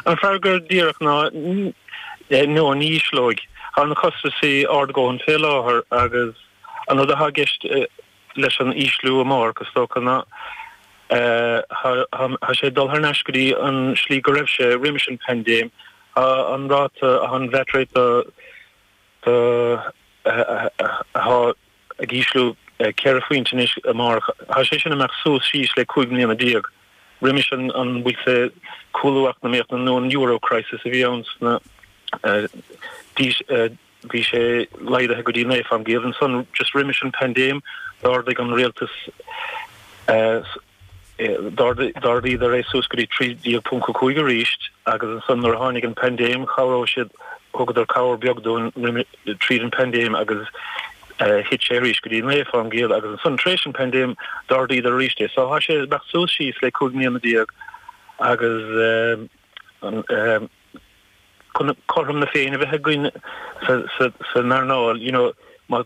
An fearr go díreach ná nó ní ísleoidh tá na costaisí ard a dhóthain fé láthair agus an rud atá i gceist leis an ísliú amárach is dócha ná tá sé ag dul thar n-ais go dtí an slí go raibh sé roimis an bpaindéim an ráta an VAT rate do ag ísliú ceithre phointe anois amárach. Tá sé sin ag imeacht suas síos le cúig mbliana déag. Roimis an an bhfuil sé cúlú eacnamaíochta nó an euro crisis a bhí ann sna d'aois bhí sé laghdaithe go dtí naoi fén gcéad ansan just roimis an paindéim d'ardaigh an rialtas D'ardaíodar é suas go dtí 13.5 arís agus ansan nuair a tháinig an paindéim chabhraigh siad, thugadar cabhair beag dúinn tríd an paindéim agus thit sé arís go dtí 9% agus ansan tar éis an paindéim d'ardaíodar arís é. So tá sé ag imeacht suas síos le 15 mbliana agus chun cothrom na Féinne a bheith againn san earnáil, you know, má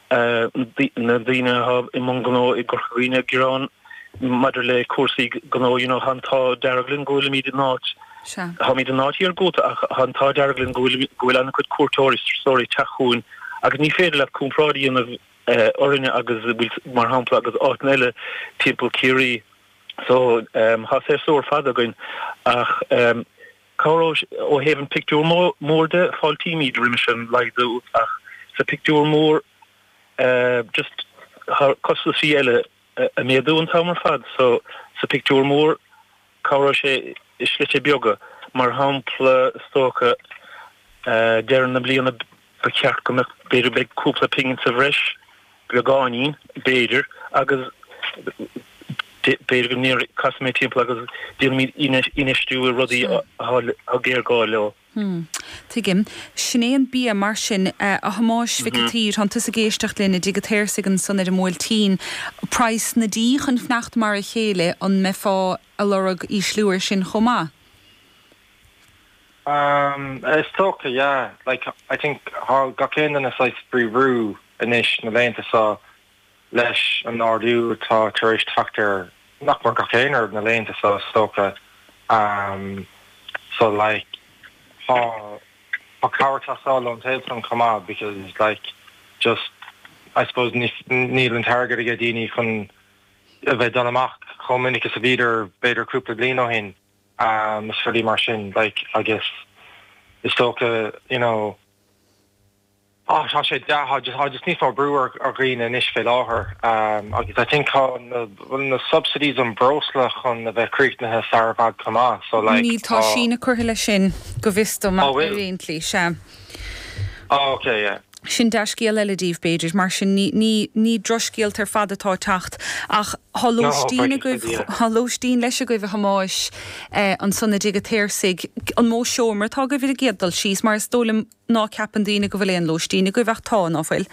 na daoine atá i mbun gnó i gCorca Dhuibhne, ag gearán maidir le cúrsaí gnó, you know, tá an t-ádh dearg linn go bhfuilimid in áit, táimid in áit iargúlta ach tá an t-ádh dearg linn go bhfuil, go bhfuil an-chuid cuairteoirí, turasóirí ag teacht chugainn agus ní féidir leat comparáid a dhéanamh orainne agus a bhfuil, mar shampla, agus áiteanna eile timpeall Ciarraí. So, tá séasúr fada againn ach Cabhróidh sé ó thaobh an pictiúr mór de, fáiltímid roimis an laghdú ach sa pictiúr mór just tá costaisí eile ag méadú an t-am ar fad so sa pictiúr mór cabhróidh sé i slite beaga mar shampla is dócha deireadh na bliana Ba cheart go mbeadh, b'fhéidir, beidh cúpla pingin sa bhreis, beagáinín, b'fhéidir, agus b'fhéidir go ndeir, casfaimid timpeall agus déanfaimid infheistiú i rudaí atá géarghá leo. Tuigim. Sin é an bia, mar sin, a Thomáis Mhic an tSaoir, tánn tusa ag éisteacht linn i dTigh an tSaorsaigh ansan ar an mBuailtín, praghas na dí chun fanacht mar a chéile, an mbeifeá ag lorg ísliú ar sin chomh maith? Is dócha, yeah. Like, I think, tá gach aon duine saghas fé bhrú anois na laethanta so leis an n-ardú atá tar éis teacht ar, nach mór, gach aon rud na laethanta so, is dócha. So, like, tá cabhair ag teastáil ón taobh san chomh maith because, like, just, I suppose, níl an t-airgead aige daoine chun a bheith ag dul amach chomh minic is a bhíodar b'fhéidir cúpla bliain ó shin. agus rudaí mar sin, like, agus is dócha, you know, ah, tá sé dea, tá just, tá just níos mó brú ar, ar dhaoine anois fé láthair, ehm, agus I think tá na subsidies an bhreosla chun a bheith críochnaithe sara bhfad chomh maith, so like, Níl, tá tá síneadh curtha leis sin, go bhfios dom, ach aon tslí, sea. Oh, ok, yeah. Sin dea-scéal eile daoibh, b'fhéidir. Mar sin, ní, ní drochscéalta ar fad atá ag teacht. Ach tá lóistín agaibh, tá lóistín leis agaibh, a Thomáis, eh, ansan i dtigh a' tSaorsaigh. An mó seomra atá agaibh ar an gcéad dul síos, mar is dóigh liom ná ceapann daoine go bhfuil aon lóistín agaibh, ach tá, ná fuil?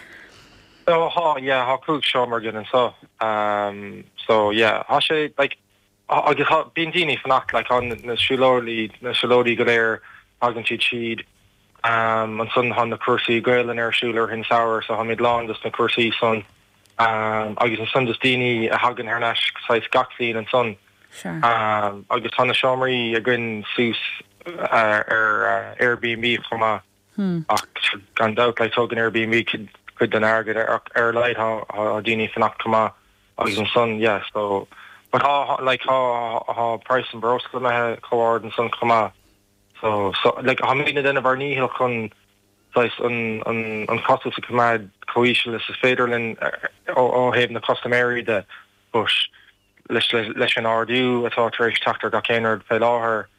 Oh, thá, yeah, thá cúig seomra againn anso. Um, so, yeah, thá sé, like, Agus tá, bíonn daoine ag fanacht, like, tá na siúlóirí, na siúlóirí go léir, tagann siad siúd. Ansan tá na cúrsaí Gaelainne ar siúl i rith an tsamhraidh, so táimid lán dos na cúrsaí san. Agus ansan dos daoine a thagann thar n-ais saghas gach bliain ansan. Agus tá na seomraí againn suas ar Airbnb chomh maith. Hm. Ach gan dabht, tógann Airbnb cuid den airgead, ach ar a laghad tá daoine ag fanacht chomh maith agus ansan, yeah, so. But tá, like, tá praghas an bhreosla imithe chomh hard ansan chomh maith. So, so, like, táimid ag déanamh ár ndícheall chun, saghas, an, an, an costas a choimeád chomh híseal is is féidir linn ó thaobh na custaiméirí de, but leis, leis an ardú atá tar éis teacht ar gach aon rud fé láthair,